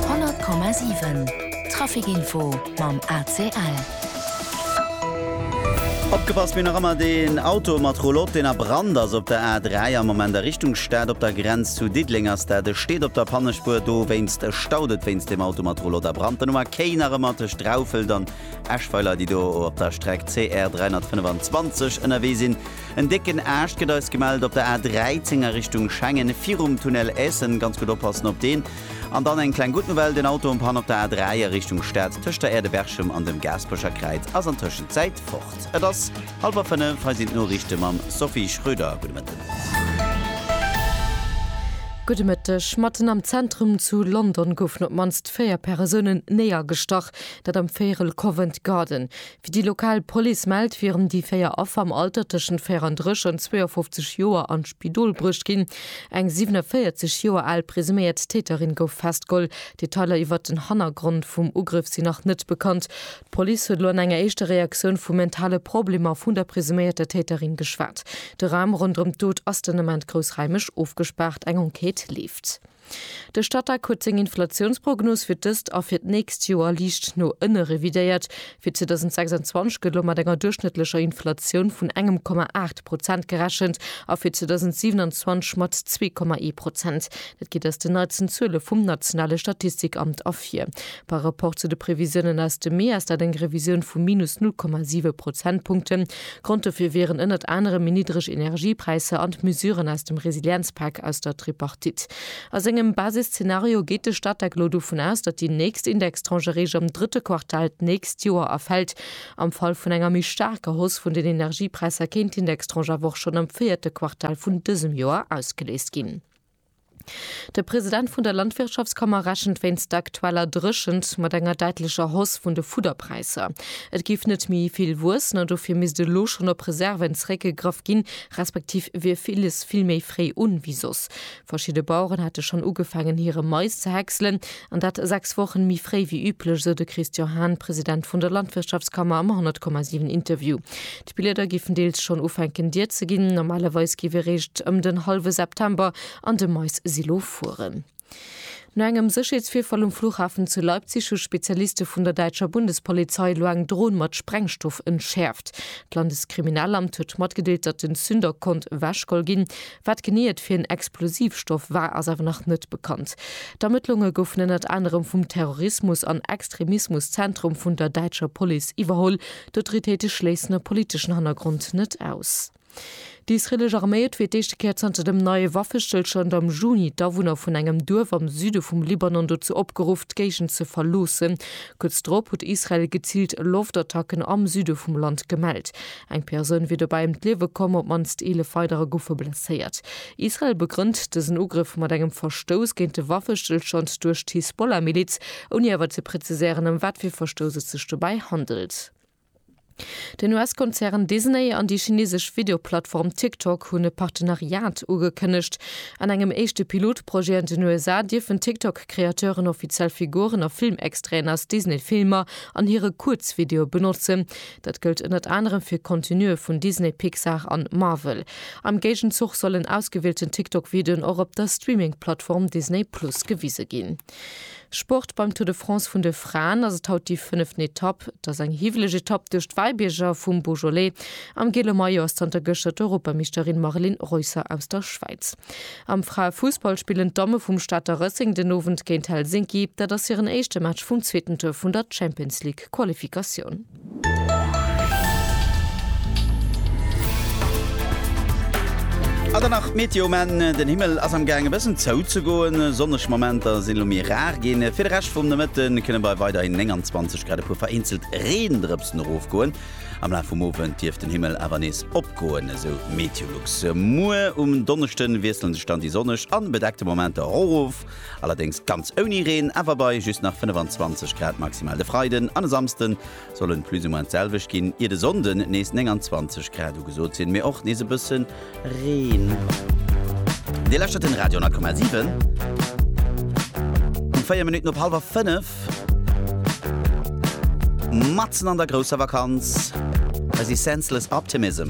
100,7 Trafic Info mam ACL. Opgepasst ween nach ëmmer deen Auto mat Roulotte deen a Brand ass op der A3 am Moment a Richtung Stad op der Grenz zu Diddeleng ass dat e steet op der Pannespuer dowéinst staut et wéinst deem Auto mat Roulotte a Brand den Nummer Kéi nach ëmmer tëscht Draufelt an Eschweiler déi do op der Streck CR 325 ënnerwee sinn En décken Aascht gëtt eis gemellt op der A 13 a Richtung Schengen, virum Tunnel Essen. Ganz gutt oppassen op deen. An dann eng kleng gutt Nouvelle, den Auto um Pan op der A 3 a Richtung Stad tëscht der Aire de Berchem an dem Gaasperecher Kräiz ass an Tëschenzäit fort. Et ass hallwer fënnef, hei sinn d'Noriichte mam Sophie Schröder. Gudde Mëtten. Gudde Mëtteg. Matten am Zentrum zu London goufen op d'mannst véier Persounen néiergestach, dat am Véierel Covent Garden. Wéi déi lokal Police mellt, wieren déi véier Affer am Alter tëschent 34 an 52 Joer an d'Spidol bruecht ginn. Eng 47 Joer al presuméiert Täterin gouf festgeholl. Detailer iwwert den Hannergrond vum Ugrëff sinn nach net bekannt. D'Police huet elo an enger éischter Reaktioun vu mentale Problemer vun der presuméierter Täterin geschwat. De Raum ronderëm d'Dot ass den Ament groussraimeg ofgespaart. Eng Enquête leeft. De Statec huet seng Inflatiounsprognos fir dëst a fir d'nächst Joer liicht no ënne revidéiert. Fir 2026 gëtt elo mat enger duerchschnëttlecher Inflatioun vun engem Komma aacht Prozent gerechent a fir 2027 mat zwee Komma ee Prozent. Dat geet aus den neitsten Zuele vum nationale Statistikamt ervir. Par Rapport zu de Previsiounen aus dem Mee ass dat eng Revisioun vu minus null Komma siwe Prozentpunkten. Grond dofir wieren ënnert anerem méi niddreg Energiepräisser an d'Mesuren aus dem Resilienzpak aus der Tripartite. A sengem Basisszenario geet de Statec elo dovun aus, datt déi nächst Indextranche eréischt am drëtte Quartal d'nächst Joer erfält. Am Fall vun enger méi staarker Hausse vun den Energiepräisser kéint d'Indextranche awer och schonn am véierte Quartal vun dësem Joer ausgeléist ginn. De President vun der Landwirtschaftskammer rechent wéinst der aktueller Dréchent mat enger däitlecher Hausse vun de Fudderpräisser. Et géif net méi vill wuessen an dofir misst elo schonn op Reserven zeréckgegraff ginn, respektiv wier villes vill méi fréi un wéi soss. Verschidde Baueren hätte schonn ugefaangen hire Mais ze häckselen an dat 6 Wochen méi fréi wéi üblech, sou de Christian Hahn, President vun der Landwirtschaftskammer am 100,7 Interview. D'Blieder giffen deels schonn ufänken dier ze ginn. Normalerweis giff ee réischt ëm den hallwe September an de Mais-Silo fueren. No engem Sécherheetsvirfall um Flughafen zu Leipzig hu Spezialiste vun der däitscher Bundespolizei elo eng Dron mat Sprengstoff entschäerft. D'Landeskriminalamt huet matgedeelt, datt den Zünder konnt ewechgeholl ginn. Wat genee et fir en Explosivstoff war, ass awer nach net bekannt. D'Ermëttlunge goufen ënnert anerem vum Terrorismus an Extremismuszentrum vun der däitscher Police iwwerholl. D'Autoritéite schléissen e politeschen Hannergrond net aus. Déi israeelesch Arméi huet fir d'éischte Kéier zanter dem neie Waffestëllstand am Juni d'Awunner vun engem Duerf am Süde vum Libanon dozou opgeruff, d'Géigend ze verloossen. Kuerz drop huet Israel geziilt Loftattacken am Süde vum Land gemellt. Eng Persoun wier dobäi ëm d'Liewe komm, op d'mannst 11 weiderer goufe blesséiert. Israel begrënnt dësen Ugrëff mat engem Verstouss géint de Waffestëllstand duerch d'Hisbollah-Miliz, ouni awer ze präziséieren ëm wat fir Verstouss et sech dobäi handelt. Den US-Konzern Disney an déi chinesesch Videoplattform TikTok hunn e Partenariat ugekënnegt. An engem éischte Pilotprojet an den USA dierfen TikTok-Kreateuren offiziell Figuren a Filmextraiten aus Disney-Filmer an hire Kuerzvideoe benotzen. Dat gëllt ënnert anerem fir Contenue vun Disney, Pixar an Marvel. Am Géigenzuch sollen ausgewielten TikTok-Videoen och op der Streaming-Plattform Disney Plus gewise ginn. Sport, Beim Tour de France vun de Fraen ass et haut déi fënneften Etapp. Et ass eng hiwweleg Etapp duerch d'Wäibierger vum Beaujolais. Am gele Maillot ass zanter gëschter d'Europameeschterin Marilyn Reusser aus der Schwäiz. Am Fraefussball spillen d'Damme vum Stater Rëssing den Owend géint Helsinki. Dat ass hiren éischte Match vum zweeten Tour vun der Champions League-Qualifikatioun. An dann nach d'Meteo, men den Himmel ass am gaang e bëssen zou ze goen. Sonneg Momenter sinn elo méi rar ginn. Fir de Rescht vum Nomëtte kënne bei weiderhin 29 Grad e puer vereenzelt Reendrëpsen erofgoen. Am Laf vum Owend dierft den Himmel awer nees opgoen, esou Meteolux. Muer um Donneschde wiessele sech dann déi sonneg an bedeckte Momenter erof. Allerdéngs ganz ouni Reen, awer bei just nach 25 Grad maximal. De Freiden an e Samsde soll en plus ou moins d'selwecht ginn, ier de Sonnde nees 29 Grad ugesot sinn, mee och nees e bësse Reen. Dir lauschtert den Radio 10,7. Um 4 Minutten op hallwer 5. Matzen an der grousser Vakanz. Hei si Senseless Optimism.